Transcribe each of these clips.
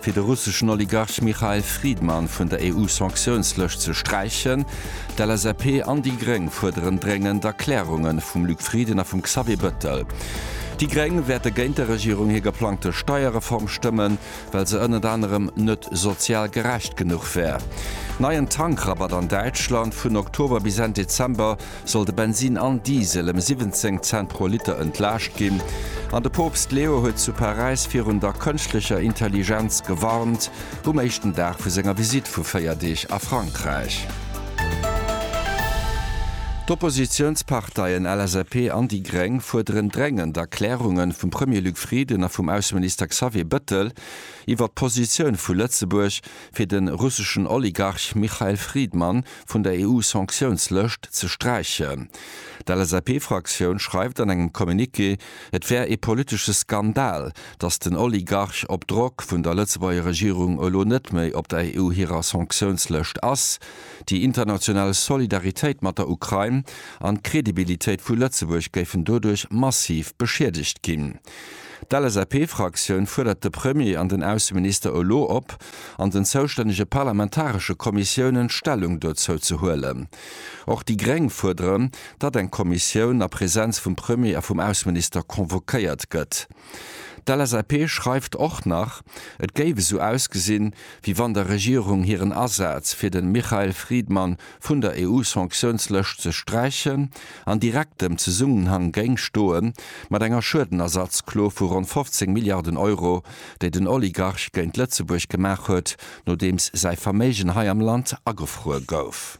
fir de russeschen Oligarch Mikhail Fridman vun der EU-Sanktiounslëscht ze sträichen. D'LSAP an déi Gréng fuerderen dréngend Erklärunge vum Luc Frieden a vum Xavier Bettel. Déi Gréng wäerte géint der Regierung hir geplangte Steierreform stëmmen, well se ënnert anerem net sozial gerecht genuch wär. Neien Tankrabatt an Däitschland, vun Oktober bis Enn Dezember. soll de Bensin an Diesel ëm 17 Cent pro Liter entlaascht ginn an de Poopst Leo huet zu Paräis virun der kënschtlecher Intelligenz gewarnt, um éischten Dag vu senger Visitt vu 4 Deeg a Frankräich. D'Oppositiounsparteien LSAP an déi Gréng fuerderen dréngend Erklärungen vum Premier Luc Frieden a vum Ausseminister Xavier Bëttel iwwer d'Positioun vu Lëtzebuerg fir de russeschen Oligarch Michael Fridman vun der EU-Sanktiounslëscht ze sträichen. D'LSAP-Fraktioun schreift an engem Communiqué, et wär ee politesche Skandal, datt den Oligarch op Drock vun der Lëtzebuerger Regierung elo net méi op der EU hirer Sanktiounslëscht ass. Déi international Solidaritéit mat der Ukrain an d'Credibilitéit vu Lëtzebuerg géifen doduerch massiv beschiedegt ginn. D'LSAP-Fraktioun fuerdert de Premier an den Ausseminister elo op, an den zoustännege parlamentaresche Kommissiounen Stellung dozou ze huelen. Och déi Gréng fuerderen, datt eng Kommissioun a Präsenz vum Premier a vum Ausseminister convoquéiert gëtt. D'LSAP schreift och nach, et géif esou ausgesinn, wéi wann der Regierung hiren Asaz fir de Michael Friedman vun der EU-Sanktiounslëscht ze sträichen, an direktem Zesummenhang géing stoe mat enger Schuedenersatzklo vu ronn 15 Milliarden Euro, déi den Oligarch géint Lëtzebuerg gemaach huet, nodeems säi Verméigen hei am Land agefruer gouf.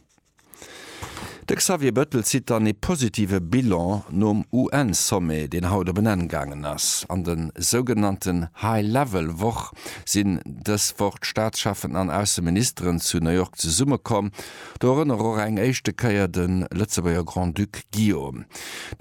De Xavier Bettel zitt dann ee positive Bilan nom UN-Sommet, deen haut op en Enn gaangen ass, an de sougenannten High-Level-Woch, sinn dës Woch d'Staatscheffen an Ausseministeren zu New York zesummekomm. Do erënnere och eng éischte Kéier de Lëtzebuerger Grand-Duc Guillaume.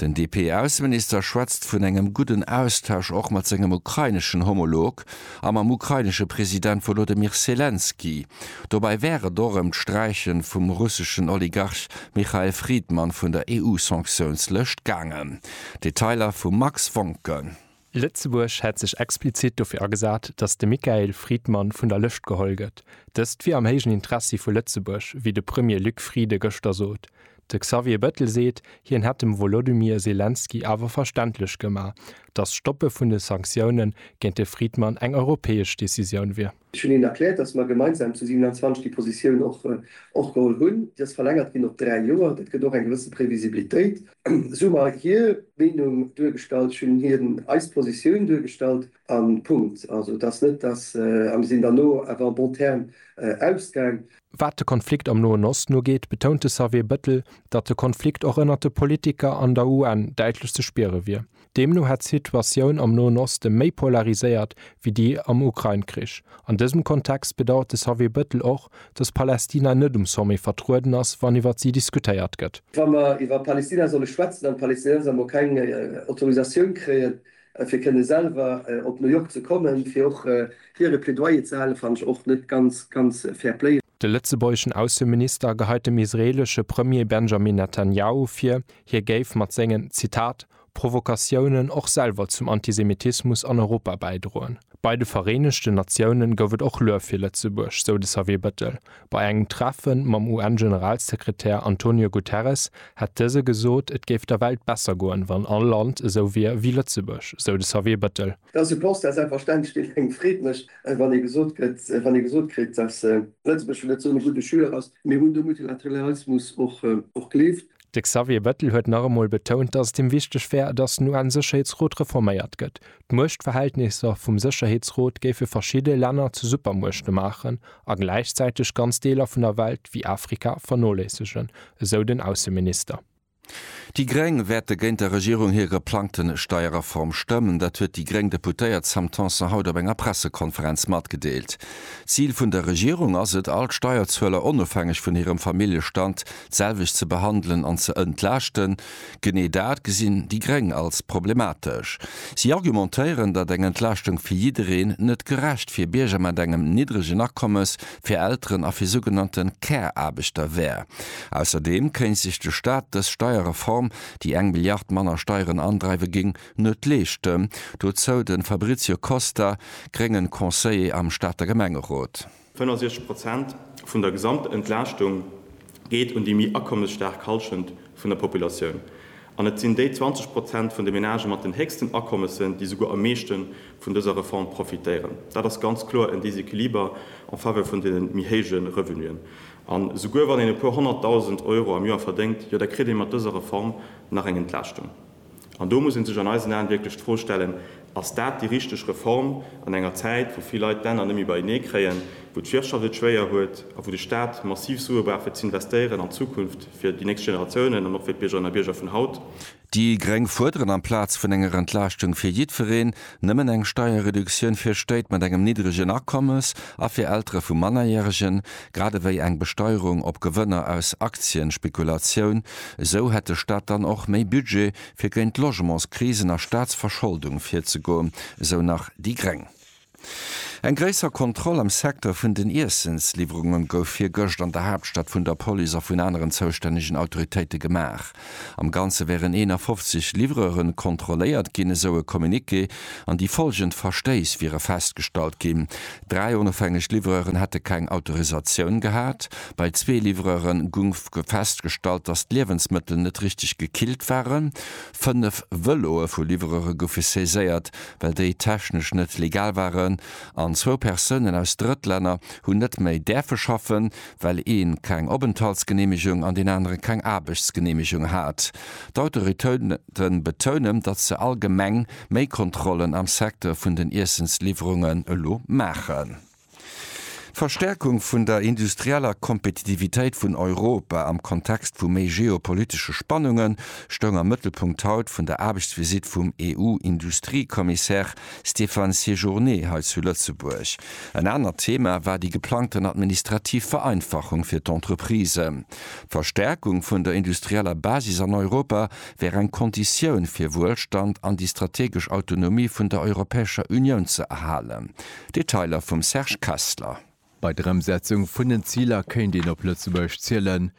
Den DP-Ausseminister schwätzt vun engem gudden Austausch och mat sengem ukraineschen Homolog a mam ukrainesche President Wolodymyr Selenskyj. Dobäi wär et och ëm d'Sträiche vum russeschen Oligarch Michael Fridman vun der EU-Sanktiounslëscht gaangen. Detailer vum Max Wonken. Lëtzebuerg hätt sech explizit dofir agesat, datt de Michael Friedman vun der Lëscht geholl gëtt. Dëst wier am héijen Interessi vu Lëtzebuerg, wéi de Premier Luc Frieden gëschter sot. De Xavier Bettel seet, hien hätt dem Wolodymyr Selenskyj awer verständlech gemaach, datt d'Stoppe vun de Sanktioune géint de Friedman eng europäesch Decisioun wier. Ech hunn hinnen erkläert, dass mer gemeinsam zu 27 déi Positioun och geholl hunn. Déi ass verlängert ginn op dräi Joer. Dat gëtt och eng gewësse Previsibilitéit. Esou hu mer hir Meenung duergestallt, ech hunn hinnen eis Positioun duergestallt a Punkt. Also et ass net, dass, a mir sinn dann elo awer en bon terme ausgaang. Wat de Konflikt am Noen Osten ugeet, betount de Xavier Bettel, datt de Konflikt och ënnert de Politiker an der UN däitlech ze spiere wier. Deemno hätt d'Situatioun am Noen Oste méi polariséiert wéi déi am Ukrain-Krich. An dësem Kontext bedauert de Xavier Bettel och, datt Palästina net um Sommet vertrueden ass, wann iwwer si diskutéiert gëtt. Wa mer iwwer Palästina solle schwätzen an d'Palästinenser emol keng Autorisatioun kréien, fir kënne selwer op New York ze kommen, fir och hiere Plädoyer ze halen, fannen ech och net ganz, ganz fair play. De lëtzebuergeschen Ausseminister geheit dem israeelesche Premier Benjamin Netanjahu vir, hie géif mat sengen, Zitat, Provokatiounen och selwer zum Antisemitismus an Europa bäidroen. Bei de Vereenegten Natiounen gouf et och Luef fir Lëtzebuerg, sou de Xavier Bettel. Bei engem Treffe mam UN-Generalsekretär Antonio Guterres hätt dëse gesot, et géif der Welt besser goen, wann all Land esou wier wéi Lëtzebuerg, sou de Xavier Bettel. Dass e Constat selbstverständlech deen engem Freed mécht, wann ee gesot gëtt, wann ee gesot kritt, dass Lëtzebuerg vläicht net esou e gudde Schüler ass. Mir hunn de Multilateralismus och gelift. De Xavier Bettel huet nach emol betount, datt et him wichteg wär, datt den UN-Sécherheetsrot reforméiert gëtt. D'Muechtverhältnisser vum Sécherheetsrot géife verschidde Länner zu Supermuechte maachen a gläichzäiteg ganz Deeler vun der Welt, wéi Afrika, vernoléissegen, esou den Ausseminister. Déi Gréng wäerte géint der Regierung hir geplangte Steierreform stëmmen. Dat huet déi gréng Deputéiert Sam Tanson haut op enger Pressekonferenz matgedeelt. D'Zil vun der Regierung ass et, all d'Steierzueler, onofhängeg vun hirem Familljestand, d'selwecht ze behandelen an ze entlaaschten, genee dat gesinn déi Gréng als problematesch. Si argumentéieren, datt eng Entlaaschtung fir jiddereen net gerecht fir Bierger mat engem niddregen Akommes, fir Elteren a fir sougenannte Care-Aarbechter wär. Ausserdeem kéint sech de Staat dës Steierreform, déi eng Milliard manner Steieren andreiwe géing, net leeschten. Dozou de Fabrizio Costa, gréngen Conseiller am Stater Gemengerot. 65 Prozent vun der Gesamtentlaaschtung geet un déi méi akommesstaark Halschent vun der Populatioun. An et sinn déi 20 Prozent vun de Menagë mat den héchsten Akommessen, déi souguer am meeschte vun dëser Reform profitéieren. Dat ass ganz kloer en Déséquiliber en faveur vun de méi héije Revenuen. An souguer wann een e puer honnertdausend Euro am Joer verdéngt, jo da kritt ee mat dëser Reform nach eng Entlaaschtung. An do muss ee sech an eisen Aen wierklech d'Fro stellen, Ass dat déi richteg Reform an enger Zäit, wou vill Leit d'Enner net méi beienee kréien, wou d'Wirtschaft et schwéier huet a wou de Staat massiv Sue brauch fir z'investéieren an d'Zukunft fir déi nächst Generatiounen an och fir d'Biergerinnen a Bierger vun haut? Déi gréng fuerderen, amplaz vun enger Entlaaschtung fir jiddwereen, Nëmmen eng Steierreduktioun fir Stéit mat engem niddregen Akommes a fir Eltere vu Mannerjäregen, grad ewéi eng Besteierung op Gewënner aus Aktienspekulatioun, esou hätt de Staat dann och méi Budget, fir géint d'Logementskrisen a Staatsverscholdung virzegoen, esou nach déi gréng. Eng gréisser Kontroll am Secteur vun den Iessensliwwerunge gouf virgëscht an der Haaptstad vun der Police a vun aneren zoustännegen Autoritéite gemaach. Am Ganze wären 51 Livreuren kontrolléiert ginn, esou e Communiqué, an déi follgend Verstéiss wiere festgestallt ginn, Dräi onofhängeg Livreuren hätte keng Autorisatioun gehat, bei zwee Livreure gung festgestallt, datt d'Liewensmëttel net richteg gekillt waren, fënnef Vëloe vu Livreure goufe saiséiert, well déi technesch net legal waren, an zwou Persounen aus Drëttlänner hunn net méi däerfe schaffen. well ee keng Openthaltsgeneemegung an deen anere keng Aarbechtsgeneemegung hat. D'Autoritéite betounen, datt se allgemeng méi Kontrollen am Secteur vun den Iessensliwwerungen elo maachen. D'Verstäerkung vun der industrieller Kompetitivitéit vun Europa am Kontext vu méi geopolitesche Spannunge stoung am Mëttelpunkt haut vun der Aarbechtsvisitt vum EU-Industriekommissär Stéphane Séjourné hei zu Lëtzebuerg. En anert Thema war déi geplangten administrativ Vereinfachung fir d'Entreprisen. D'Verstärkung vun der industrieller Basis an Europa wär eng Konditioun fir Wuelstand an déi strategesch Autonomie vun der Europäescher Unioun ze erhalen. Detailer vum Serge Kessler. Bei der Emsetzung vun den Ziler kéint een op Lëtzebuerg zielen.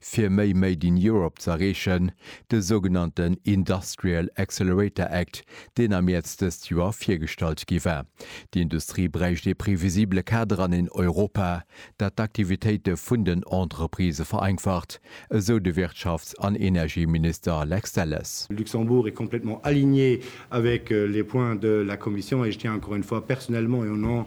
Fir méi Made in Europe ze erreechen, de sougenannten Industrial Accelerator Act, deen am Mäerz dëst Joer virgestallt gi war. Déi Industrie bräicht ee previsibele Kader an een Europa, dat d'Aktivitéite vun den Entreprisë vereinfacht, esou de Wirtschafts an Energieminister Lex Delles. Le Luxembourg est complètement aligné avec les points de la Commission et je tiens encore une fois personnellement et au nom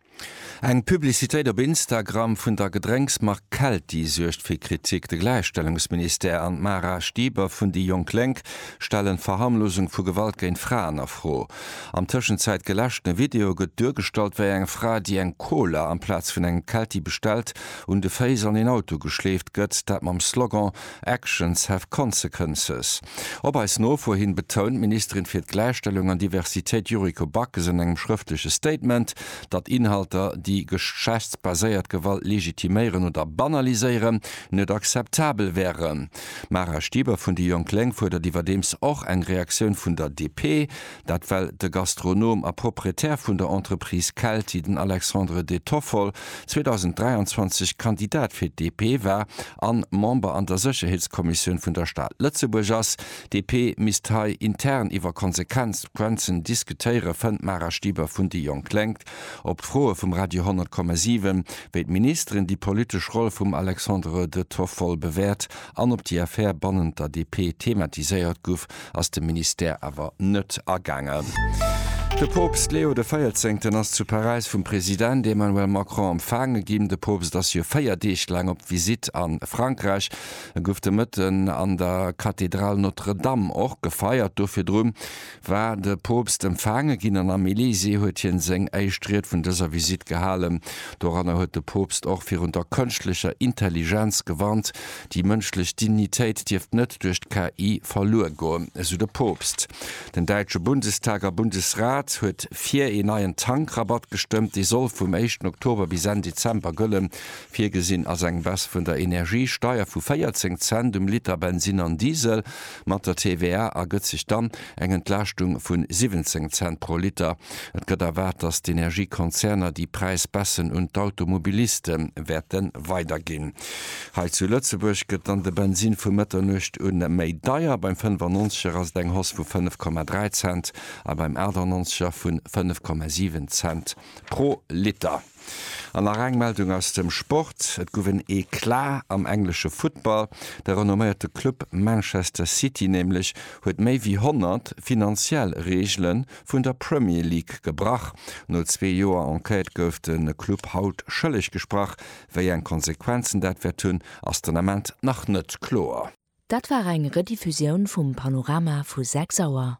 Eng Publicitéit op Instagram vun der Gedrénksmark Kelti suergt fir Kritik. De Gläichstellungsministère an d'Mara Stieber vun déi jonk Lénk stellen d'Verharmlosung vu Gewalt géint Fraen a Fro. Am Tëschenzäit geläschten Video gëtt duergestallt, wéi eng Fra, déi eng Cola amplaz vun engem Kelti bestellt, un de Féiss an een Auto geschleeft gëtt, dat mam Slogan Actions have consequences. Op eis Nofro hin betount d'Ministerin fir d'Gläichstellung an Diversitéit Yuriko Backes an engem schrëftleche Statement, datt Inhalter, déi geschlechtsbaséiert Gewalt legitiméieren oder banaliséieren, net akzeptabel wären. D'Mara Stieber vun déi jonk Lénk fuerdert iwwerdeems och eng Reaktioun vun der DP. Dat well de Gastronom a Proprietär vun der Entreprise Kelti, den Alexandre De Toffol, 2023 Kandidat fir d'DP war an Member an der Sécherheetskommissioun vun der Stad Lëtzebuerg ass. D'DP misst hei intern iwwer Konsequenzen diskutéieren, fënnt d'Mara Stieber vun déi jonk Lénk. Op d'Froe vum Radio 10,7, wéi d'Ministeren déi politesch Roll vum Alexandre De Toffol bewäert, an op déi Affär bannent der DP thematiséiert guff, ass de Ministère awer net agaangen. De Poopst Leo de Véierzéngten ass zu Paräis vum President Emmanuel Macron empfaange ginn. De Poopst ass jo 4 Deeg laang op Visitt a Frankräich. E guff de Mëtten an der Kathedral Notre Dame och gefeiert. Do virdrun war de Poopst empfaange ginn an am Elysée huet hien seng éischt Ried vun dëser Visitt gehalen. Doranner huet de Poopst och virun der kënschtlecher Intelligenz gewarnt. Déi mënschlech Dignitéit dierft net duerch d'KI verluer goen, esou de Poopst. Den däitsche Bundestag a Bundesrat huet fir een neien Tankrabatt gestëmmt. Dee soll vum éischten Oktober bis Enn Dezember gëllen. Virgesinn ass eng Baisse vun der Energiesteier vu 14 Cent um Liter Bensinn an Diesel. Mat der TVA ergëtt sech dann eng Entlaaschtung vun 17 Cent pro Liter. Et gëtt erwaart, datt d'Energiekonzerner déi Präisbaisse un d'Automobiliste wäerte weiderginn. Hei zu Lëtzebuerg gëtt dann de Bensin vu Mëtternuecht u méi deier, beim 95 er ass et eng Hausse vu 5,3 Cent a beim 98 er vu 5,7 Cent pro Liter. An nach eng Meldung aus dem Sport, Et gouf en Eclat am englesche Futtball. De renomméierte Club Manchester City nämlech huet méi wéi 100 finanziell Reegele vun der Premier League gebrach. No zwee Joer Enquête gouf de Club haut schëlleg gesprach. Wéi eng Konsequenzen dat wäert hunn, ass den Ament nach net kloer. Dat war eng Rediffusioun vum Panorama vu 6 Auer.